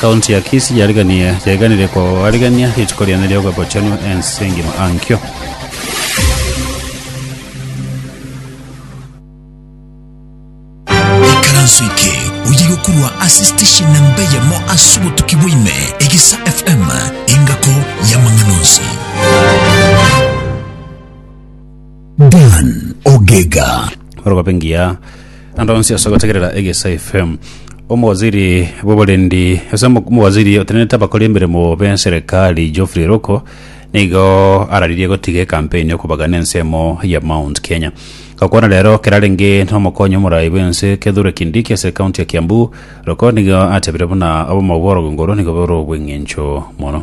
Kaunti ya Kisii yariganirie yaiganirie koarigereria rituko riane ri'ogobochenu ense engima ankio. ikaranso eke oye gokurwa ase station namba eyemo ase obotuki bwaime egesa fm engako y'amang'ana onsi Dan Ogega. Orogobe ngiya ande onsi ase gotegerera Egesa FM. Omowaziri bw'oborendi ase omo- omowaziri otenenete abakori emeremo b'enserekari Geoffrey Ruku nigo araririe gotiga ekampeni ya okobagana ensemo ya Mount Kenya gokwana rero kerarenge n'omokonyi omorai bw'ense Kithure Kindiki ase ekaunti ya Kiambu Ruku nigo atebire buna obomo bw'orogongo oro nigo bore obw'eng'encho mono.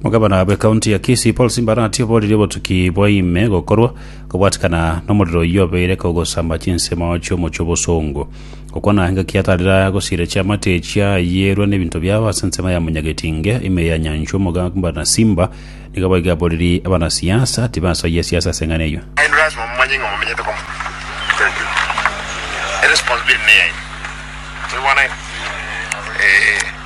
Omogabana bw'ekaunti ya Kisii Paul Simbarati oboririe obotuki bwa ime gokorwa kobwatikana nomorero oyio obeire kogosamba chinsemo chi'omochie obosongo. Gokwana engaki atarera gosira chiamate echia ayierwe n'ebinto biabo ase ensemo ya Munyagetinge ime ya Nyanchwa Omogabana Simba nigo boigo aboririe abanasiasa tibasoyia siasa ase eng'ana eyio. Aino lasima mumanye ng'a mumenyete komo. Thank you. Eresponsibility neyaino. Mwebwana iga? Ee.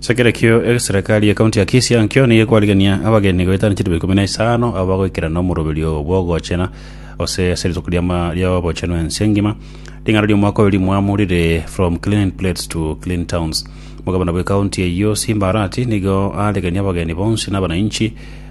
Sakira ekio eserikari y'ekaunti ya Kisii enkio nigo ekwarigania abageni goetania chituba ikomi na isano abo bagoikera nomoroberio bw'ogochena gose ase rituko ri'ama- ri'obochenu ense engima. Ring'ana ri'omwaka oyo rimwamu rire From Clean Plates to Clean Towns. Omogabana bw'ekaunti eyio Simba Arati nigo aregenie abageni bonsi na abanainchi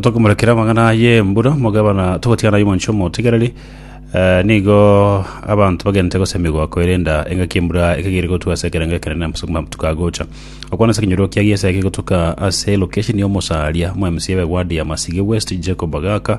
tokomorekera amang'ana aye mbura mogabana togotigana naye omonche omotigereri eh, nigo abanto bagente gosemigwa koerenda engaki embura ekegere gotuka ase ekerengo ekenene ase amatuko agocha okwana ase ekenyoro kia giesa eke gotuka ase location ya omosaria omoemsi ebe ward ya masige west jacob agaka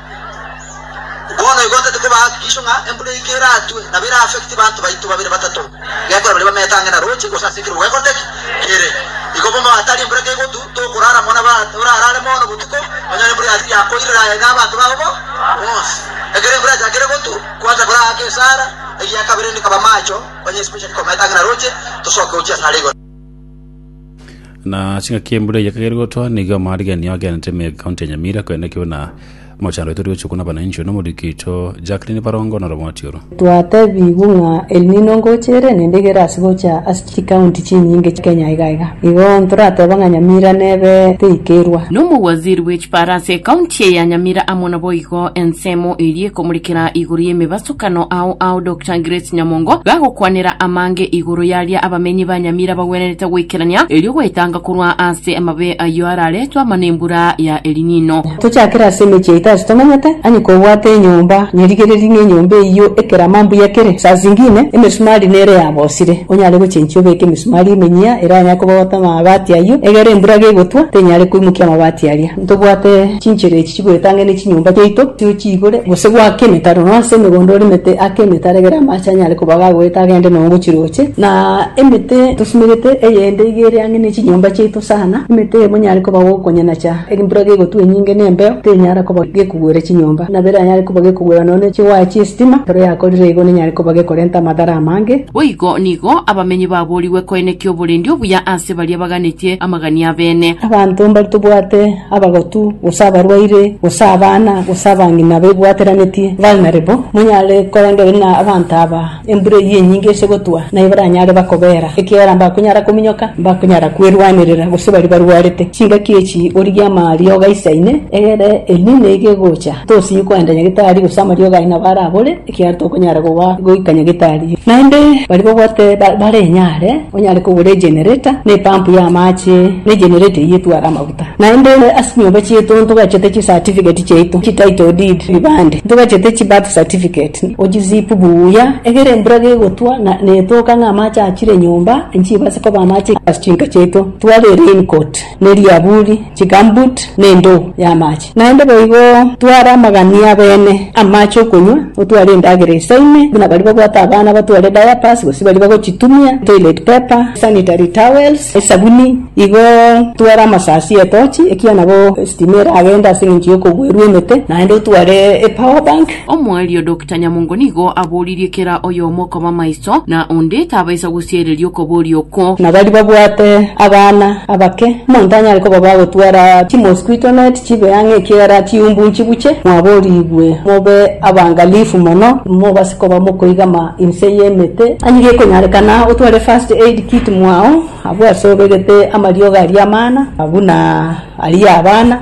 Bono igo ntete kobaa hakikisho ng'a embura eike eratwe, nabo era affect banto baito babere batato, gekora baria bamete ang'e na roche, gose ase ekero gwekore ki? Kere. Igo bono hatari embura kegotu, tokorara mono, nabo orarare mono botuko, onyore embura eyatiga yakoirera aye na abanto bao bo bonsi. Ekero embura yachakire gotu, kwancha koraaka esara, egiakabere inde kaba amacho, onye especially komete ang'e na roche, tosoke gochia asare igoro. Na ase ng'aki embura eye ekagera gotoa, nigo amarigererio agenderete me county ya Nyamira, korende ekero buna mochando oito rigochia okuna abananchi one omoriki oito Jacqueline Barongo na Romoti oro. Twatebigwe ng'a El Nino ngochere naende egere ase gocha ase chikaunti chinyinge Kenya iga iga. Igo ntorateba ng'a Nyamira nebe teikerwa. Nomowaziri bwe chiparase ekaunti eye ya Nyamira amo naboigo ensemo eria ekomorekera igoro y'emebasokano ao aodoke. Changiret Nyamongo gagokwanera amange igoro yaria abamenyi ba Nyamira bagwenerete goikerania erio goetanga korwa ase amabe ayio araretwe ama nembura ya Elinino. Tochakere ase emechie yaito ase tomanyete, onye kobwate enyomba nyerigereri ng'enyomba eyio ekerama mbuya kere, saa zingine emesumari nere yabosire, onyare gochenchia obeke emisumari emenyia eranyare koba gotema amabati ayio, egere embura gegotwa tenyare koimokia amabati aria. Ntobwate chinchera echi chigoetang'e ne chinyomba chiaito, tiochiigore, gose gwake emetaro, nonya ase emegondo orimete ake emetaro, egere amaache anyare koba gagoeta agende nonya gochiroche. Na emete tosumerete eyende iga ere ang'e ne chinyomba chiaito sana, emete eye monyare koba gokonyanacha embura gegotwa enyinge na embeo, tenyara koba gekogwera chinyomba. Nabo ere anyare koba gekogwera nonya ne chiwaya chi'esitima, ekero yakorire igo nenyare koba gekorenta amadhara amange. Boigo nigo abamenyi baboorigwe koenekia oborendi obuya ase baria baganetie amagania abene. Abanto mbari tobwate abagotu, gose abarwaire, gose abana, gose abang'ina bebwateranetie. Vulnerable. Monyare korenda ere na abanto aba, embura eyio enyinge ase gotwa, naye baranyare bakobeera, ekiagera mbakonyara kominyoka, mbakonyara kwerwanerera, gose baria barwarete. Chingaki echi origie amariogo aisaine, egere Elnino iga egocha, tosinyi koenda nyagetari, gose amariogo aye nabo arabore. ekiagera tokonyara koba goika nyagetari. Naende baria babwate bare enyare onyare kogora egenerator, na epampu y'amache, na egenerator eyio etware amaguta. Naende ase chinyomba chiaito ntogachete chicertificate chiaito, chititle deed, ebibande, ntogachete chibirth certificate, ochisipu buya, egere embura gegotwa na netoka ng'a amache achire nyomba, nchibase koba amache ase chinka chiaito, tware raincoat. ne riaburi, chigambut, na endoo y'amache. Naende boigo tware amagania abene, amache okonywa, otware endagera esaine, buna baria babwate abana batware diapers gose baria bagochitumia, toilet paper, sanitary towels, esabuni. Igo tware amasasi, etochi, ekiagera nabo esitima eragende ase eng'encho y'okogwerwa emete, naende otware epower bank. Omoerio Doctor Nyamongo nigo aboririe kera oyomo koba maiso, na onde tabaisa gosiereria okoboria oko. Na baria babwate abana abake, omonto tanyare koba bagotwara chimosquito net chibe ang'e ekiagera chiumbu nchibuche. Mwaborigwe mobe abangalifu mono, mobase koba mokoigama inse y'emete. Onye gekonyarekana otware first aid kit mwao abwo ase obegete amariogo aria amana, buna aria abana.